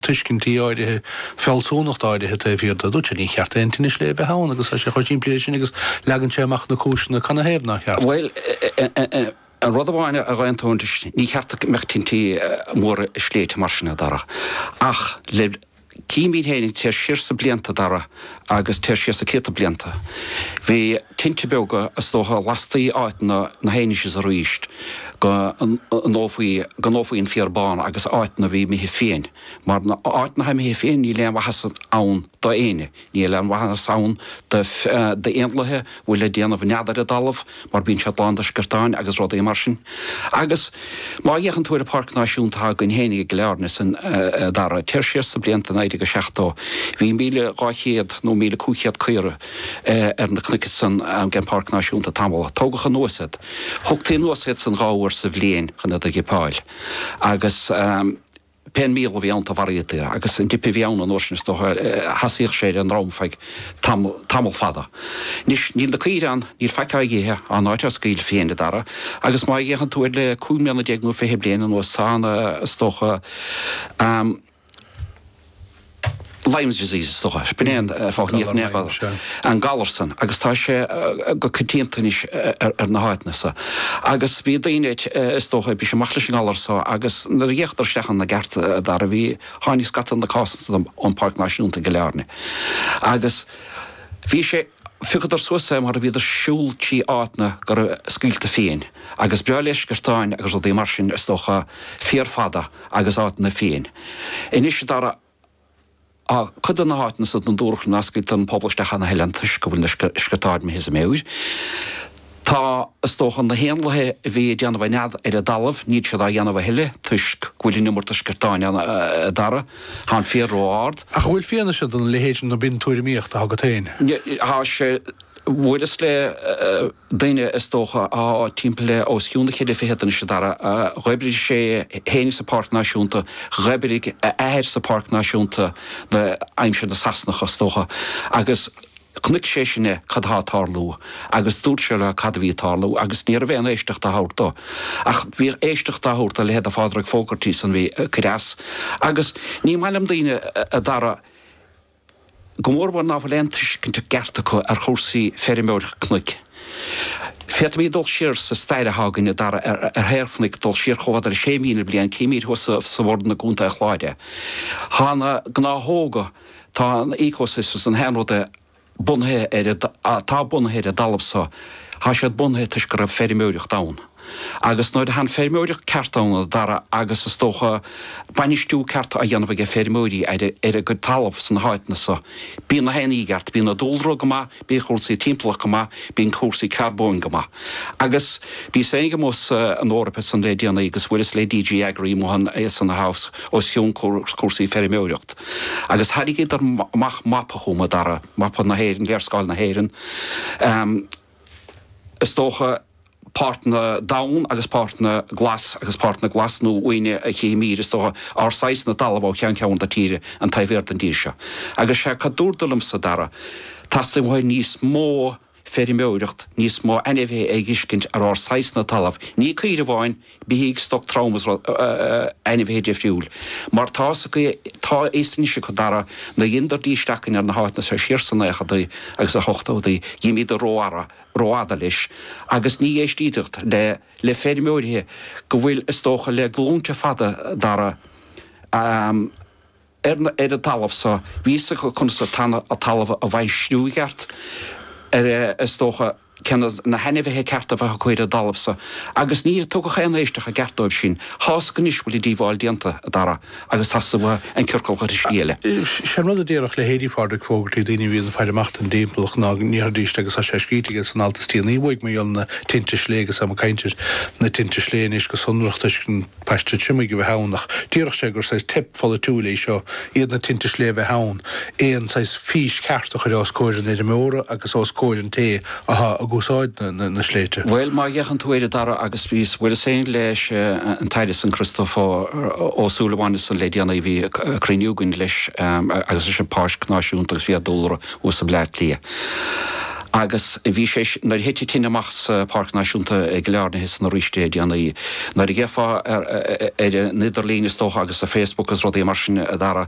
tuiscintí áirithe, fealsúnacht áirithe taobh thiar de, dúirt sé, ní cheart aon tine sléibhe a bheith ann agus tá sé chomh simplí leis sin agus leagann sé amach na cúiseanna canathaobh nár cheart. Bhuel, an rud amháin a dh'aontóinn leis, ní cheart go mbeadh tintí móra i sléibhte mar sin, a Dhara, ach lem chuimhne féin, téir siar sna blianta, a Dhara, agus téir siar sna céadta blianta. Bhí tinte beaga, is dócha, lastaí áiteanna anois is arís go ndófaí go ndófaí an féar bán agus áiteanna a bhí imithe fiain. Mar áiteanna atá imithe fiain, níl aon mhaitheas ann do éinne. Níl aon mhaitheas ann do éanlaithe. bhfuil ag déanamh nead ar an dtalamh mar bíonn siad lán de sciortáin agus rudaí mar sin agus má fhéachann tú ar an pháirc náisiúnta atá againn féinig i gCill Airne ansan, a Dhara, téir siar sna blianta 1970 bhí míle dhá chéad nó míle cúig chéad caora ar na cnoic san am den pháirc náisiúnta tamall tógadh anuas iad thugtaí anuas iad san dhá uair sa bhliain chun iad a dhipeáil agus Pé an míol a bhí iontu, mharaíodar, agus an dip a bhí ann an uair sin, is dócha, sheasaíodh sé ar an ndroim feadh tamall fada. Anois, níl na caoire ann, níl faic á dh'ithe, tá an áit á scaoileadh fiain, a Dhara, agus má fhéachann tú air le cúig mbliana déag nó fiche bliain anuas, tá an, is dócha, Lyme's disease is dócha. B'in é an fáth nach ndeachaigh an galar san agus tá sé go coitianta anois ar na háiteanna san. Agus bhí daoine, is dócha, ag briseadh amach leis an ngalar so agus nuair a d'fhéachadar isteach ann i gceart, a Dhara, bhí, tháinig scata de na cásanna san ón Páirc Náisiúnta i gCill Airne. Agus bhí sé. Phiocadar suas é mar a bhíodar siúl trí áiteanna go raibh scaoilte fiain, agus is breá le sciortáin agus rudaí mar sin, is dócha, féar fada agus áiteanna fiain. Anois, a Dhara, á, cuid de na háiteanna san, dúradh ná scaoiltear an pobal isteach ann a thuilleadh toisc go bhfuil na sciortáin imithe as a meabhair. Tá, is dócha, na héanlaithe a bhí ag déanamh a nead ar an dtalamh, níl siad á dhéanamh a thuilleadh toisc go bhfuil an iomarca sciortáin ann, a Dhara. Tá an féar ró-ard. Ach an bhfuil fianaise don leithéid sin ann nó ab in tuairimíocht atá agat féin? Tá sé. Bhuaileas le duine, is dócha, atá timpeall le os cionn na ceithre fichid anois, a Dhara. Dh'oibrigh sé féin sa Pháirc Náisiúnta, dh'oibrigh a athair sa Pháirc Náisiúnta, aimsir na Sasanach, is dócha, agus. Chonaic sé sin é, cad tá ag tarlú, agus dúirt sé leo cad a bhí ag tarlú, agus ní raibh aon éisteacht á thabhairt dó. Ach bhí éisteacht á thabhairt do leithéid de Phádraig Fogarty san bhí ag cur as, agus ní maith liom daoine, a Dhara, go mórmhór ná fuil aon tuiscint i gceart acu ar chúrsaí feirmeoireacht cnoic. Féadfaimid dul siar sa stair atá againn, a Dhara, ar thaobh cnoic, dul siar chomh fada le sé mhíle bliain, téimid thuas sa Bhoireann i gContae an Chláir. Tá na gnáthóga. Tá an ecosystem, gach aon rud, bunaithe ar an, atá bunaithe ar an dtalamh so, tá siad bunaithe toisc go raibh feirmeoireacht ann. Agus nuair atá an feirmeoireacht ceart ann, a Dhara, agus is dócha, bainistiú ceart á dhéanamh aige feirmeoirí ar a gcuid talamh sna háiteanna so, bíonn na héin i gceart, bíonn an dúlra go maith, Bíonn cúrsaí timpeallachta go maith, bíonn cúrsaí carbóin go maith. Agus bhíos féinig amuigh san Eoraip ansan le déanaí agus bhuaileas le DG Agri amuigh ann ansan na House os cionn cúrsaí feirmeoireacht. Agus thairrigíodar amach mapa chugam, a Dara, mapa na hÉireann, léarscáil na hÉireann, is dócha, páirteanna donn agus páirteanna glas agus páirteanna glas nó uaine a chífimid is dócha ár saghasna talamh ó cheann ceann na tíre an taobh thiar den dtír seo agus sé cad dúradar liomsa a Dara teastaíonn uait níos mó feirmeoireacht níos mó ainmhithe a fheiscint ar ár saghasna talamh ní caoire amháin beithígh stoc trom is rud ainmhithe difriúil mar tá fhios acu tá fhios anois acu a Dara nuair a dheineadar destocking ar na háiteanna so siar sna nóchaidí agus na hochtóidí gur imíodar rófhada rófhada leis agus ní éistíodh le le feirmeoirí go bhfuil, is dócha, le glúinte fada a Dara ar an talamh so. Bhí fhios acu conas an talamh a bhainistiú i gceart ar, is dócha, cé hiad na hainmhithe cearta a bheadh ag cur ar an dtalamh so, agus ní tugadh aon éisteacht ceart dóibh sin. Tá fhios acu anois go bhfuil an díobháil déanta a Dara. Agus tá suim agam an ciorcal ghiorraiscí eile. Sé an rud a déarfadh leithéidí Phádraic Fogarty, daoine a bhíonn ag faire amach don dtimpeallacht, ná go ndéarfaidís, agus tá sé scríte aige san alt is déanaí uaidh, mar gheall ar na tinte sléibhe, agus táimid ag caint ar na tinte sléibhe anois go sonrach toisc an paiste triomaigh a bheith ann, ach déarfadh sé gur saghas teip pholaitiúil é seo, iad na tinte sléibhe a bheith ann, aon saghas fís cheart a chur os comhair an fheirmeora agus os comhair an té Atá ag úsáid na sléibhte. Bhuel, má fhéachann tú air a Dara agus bhíos, bhuaileas féin leis an tAire ansan Christópher Ó Súilleabháin ansan le déanaí bhí cruinniú againn leis agus leis an Páirc Náisiúnta agus Fiadhúlra thuas i mBleá Cliath agus bhí sé, nuair a thit an tine amach sa Pháirc Náisiúnta i gCill Airne ansan arís le déanaí, nuair a gheofá ar an idirlíon is dócha agus ar Facebook agus rudaí mar sin a Dhara,